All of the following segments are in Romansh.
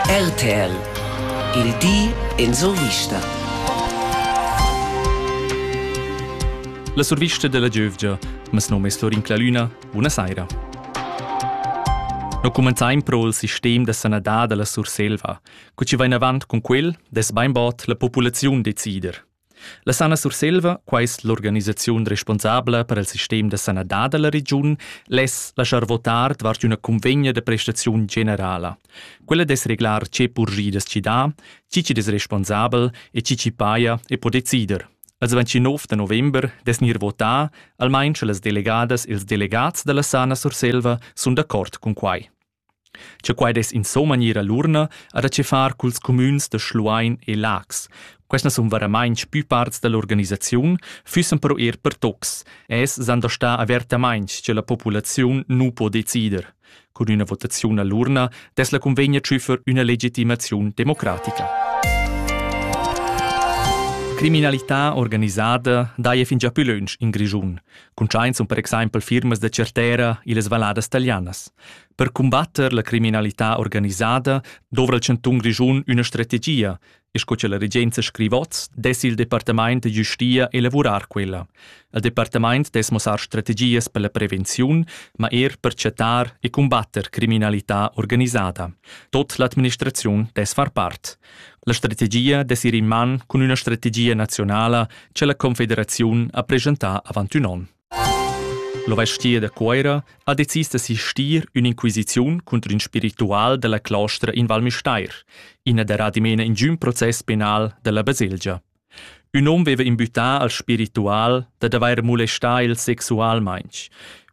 RTL Il di en survista. La survista della giövgia, mes nome è Florin Clalüna, buona saira. No comenzaim pro il sistem da sanadad della Surselva, cu ci va in avant con quel, des beinbod la populaziun decider. La Sana Surselva, quai es l'organisaziun responsabla per il sistem da sanadad da la regiun, less laschar votar davart üna cunvegna da prestaziun generala. Quella dess reglar che purgidas chi dà, chi chi'd es responsabel e chi chi paja e po decider. Als 29 da november dess gnir votà, almain sche las delegadas e ils delegats da la Sana Surselva sun d'accord cun quai. Cha quai dess insomma gnir a l'urna ha da che far culs cumüns da Schluein e Laax. Questa sun varamainch pü parts da l'organisaziun, füssan però eir pertocs e es s'han da star avertamainch cha la populaziun nu po decider. Cun üna votaziun a l'urna dess la cunvegna tschüffer üna legitimaziun democratica. Criminalità organisada daja fingià pü lönch in Grischun. Cuntschaint sun per exaimpel firmas da Certera illas valladas talianas. Per cumbatter la criminalità organisada dovra il chantun Grischun üna strategia, e sco che la regenza scrivot, dess il departamaint da giustia elavurar quella. Il departamaint dess mossar strategias per la prevenziun, ma er per chattar e cumbatter criminalità organisada. Tot l'administraziun dess far part. La strategia dess ir in man cun üna strategia nazionala che la Confederaziun ha presentà avant ün on. La vestia da Cuera ha decis d'assistir ün'inquisiziun contro ün spiritual dalla claustra in Val Müstair, ina da adimena in giun process penal dalla baselgia. Ün hom veva imbütà al spiritual dad avair molestà el sexualmaing.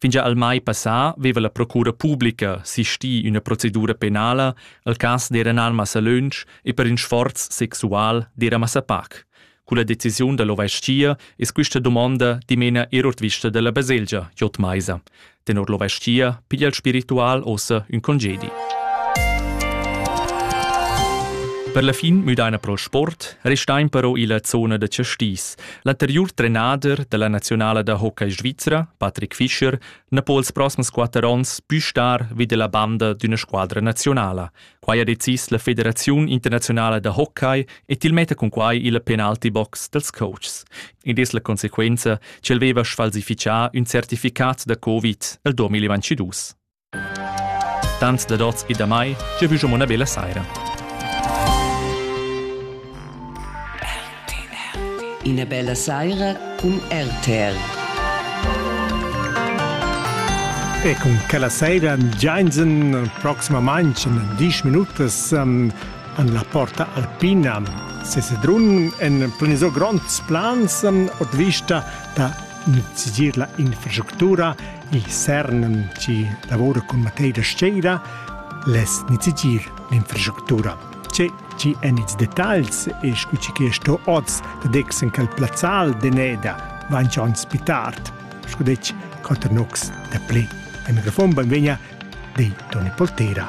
Fingià al mai passà veva la procura publica sistì üna procedura penala al cas d'eran al massa lönch e per ün sforz sexual d'era massa pac. Culla decisiun da l'ovestia es quista dumonda dimena eir ordvista da la baselgia J. Meiser. Tenor l'ovestia piglia il spiritual ossa ün congedi. Per la fin müdaina pro sport restain però illa zona da Chastis. L'anteriur trenader della nazionala da hockey svizra, Patrick Fischer, na po els prossems quatter ons pü star vi della banda d'üna squadra nazionala. Quai ha decis la Federaziun internaziunala da hockey e til metta cun quai il penalty box dals coaches. Id es la consequenza ch'el veva sfalsifichà ün certificat da Covid el 2022. Tanz da dots e da mai, giavüschamo una bella saira. Ina bella saira cun RTR. E cun quella saira giainsen proximamain en disch minutas an, an la Porta Alpina. Sesedrun en planiso gronds plans ot vista da sigir la infrastructura i CERN ci lavora con Matei da Sceira les nizigir l'infrastructura. Tge chi èn ils detagls e scu che sto oz da dex en quel plazzal d'Eneda van schon pi tard, sco detg, quatter nocs da plé. En refom benvegna de Toni Poltera.